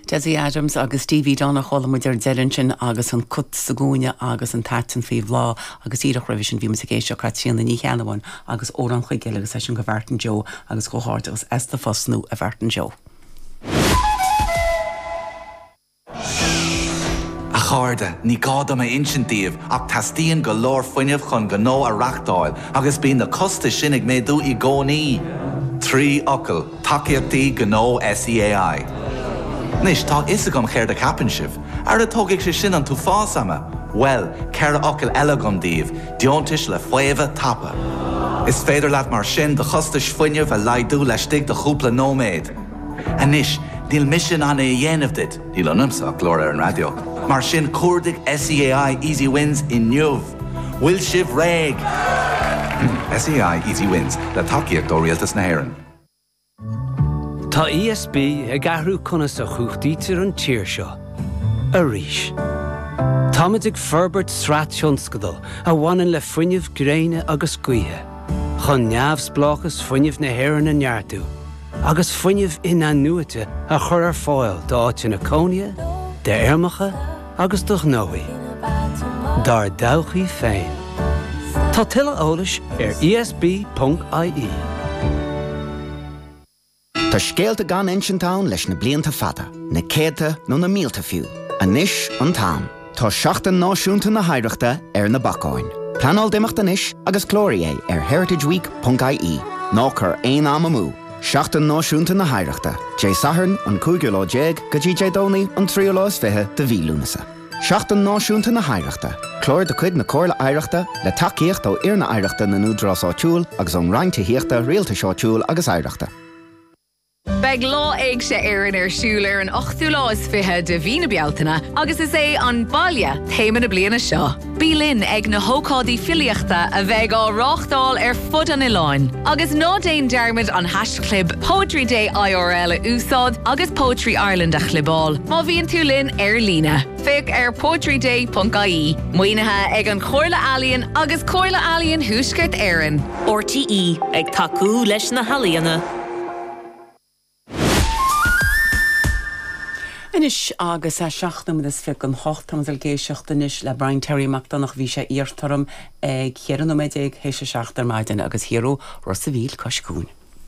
Desi Adams agus Stevie Dunne, chuala muid ar deireadh ansin agus An Cat sa gCúinne agus an t-aiteann faoi bhláth agus díreach roimhe sin bhí muid ag éisteacht le Caitríona Ní Cheannabháin agus Odhrán Choigéal agus leis sin go Mháirtín Joe agus comhghairdeachas as do phost nua a Mháirtín Joe. A chairde, ní gá dom a insint daoibh ach teastaíonn go leor fuinnimh chun gnó a reáchtáil agus bíonn na costais sin ag méadú i gcónaí. Trí fhocal, tacaíochtaí gnó SEAI. Anois, tá a fhios agam céard a cheapann sibh. Ara tógfaidh sé sin an t-uafás ama! Bhuel, ceithre fhocal eile agam daoibh, deontais le faomhadh tapa. Is féidir leat mar sin do chostais fuinnimh a laghdú laistigh de chúpla nóiméad. Anois, níl mise in ann é a dhéanamh duit, níl ionamsa ach glór ar an raidió, mar sin cuardaigh SEAI Easy Wins inniu! Bhfuil sibh réidh? SEAI Easy Wins, le tacaíocht ó Rialtas na hÉireann. Tá ESB ag athrú conas a chumhachtaítear an tír seo. Arís. Táimid ag forbairt sraith tionscadal a bhaineann le fuinneamh gréine agus gaoithe, chun neamhspleáchas fuinnimh na hÉireann a neartú, agus fuinneamh in-athnuaite a chur ar fáil d'áiteanna cónaithe, d'fheirmeacha agus do ghnóthaí dár dtodhchaí féin. Tá tuilleadh eolais ar ESB.ie. Tá scéalta gan insint ann leis na blianta fada, na céadta nó na mílte fiú. Anois an t-am. Tá Seachtain Náisiúnta na hOidhreachta ar na bacáin. Pleanáil d'imeacht anois agus cláraigh é ar heritageweek.ie. Ná cuir aon am amú! Seachtain Náisiúnta na hOidhreachta, Dé Sathairn an cúigiú lá déag go dtí Dé Domhnaigh an tríú lá is fiche de mhí Lúnasa. Seachtain Náisiúnta na hOidhreachta, Clár de chuid na Comhairle Oidhreachta, le tacaíocht ó Fhoirne Oidhreachta na nÚdarás Áitiúil agus ón Roinn Tithíochta, Rialtais Áitiúil agus Oidhreachta. Beidh Lá Éigse Éireann ar siúl ar an ochtú lá is fiche de mhí na Bealtaine agus is é 'An Baile' téama na bliana seo. Bí linn ag na hócáidí filíochta a bheidh á reáchtáil ar fud an oileáin. Agus ná déan dearmad an haischlib Poetry Day IRL a úsáid agus Poetry Ireland a chlibeáil má bhíonn tú linn ar líne. Féach ar poetryday.ie. Maoinithe ag An Chomhairle Ealaíon agus Comhairle Ealaíon Thuaisceart Éireann. RTÉ ag tacú leis na healaíona. Anois agus a seacht nóiméad is fiche chun a hocht, táimid ag éisteacht anois le Brian Terry Mac Donncha. Bhí sé iarrtha orm ag cheithre nóiméad déag tar éis a seacht ar maidin agus thiar ó Ros a' Mhíl cois cuain.